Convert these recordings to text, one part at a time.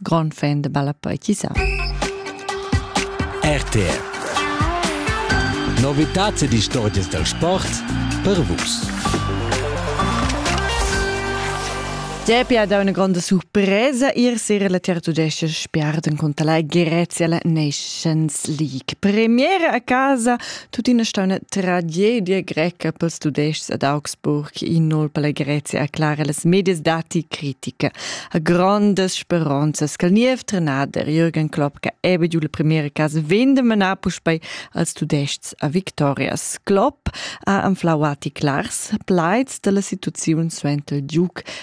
Grond fan da balla poetisà. RTR Novitats ed istorgias dal sport per vus. Depi ad una gronda surpresa ir sera la tertudescia spiarden contra la Grezia la Nations League. Premiera a casa Tuttina sta una tragedia greca pels tudescs ad Augsburg, innol per la Grezia, aclara las medias dati critica. A grandes speronzas che il niev trenader Jürgen Klopp che ebbe giù la primiera casa vende manar puspei als tudescs a victorias. Klopp ha anflau ati clars plaids dalla situaziun suenter il giuc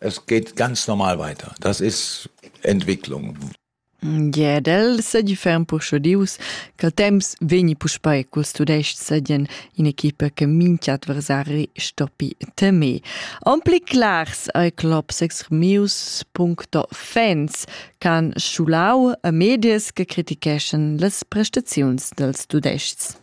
Es geht ganz normal weiter. Das ist Entwicklung. Jedel sedifferan purschodius ch'al temps vegni puspei culs tudestgs ed in in'equipa che mincha adversari stoppi temer. Ampli clars ei clubs extremius.fans ch'han schulau a medias che criticheschan las prestaziuns dels tudestgs.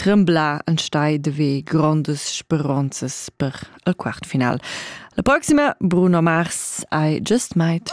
tremblar enstei de ve grondas speronzas per el quart final. La proxima Bruno Mars ai just meit.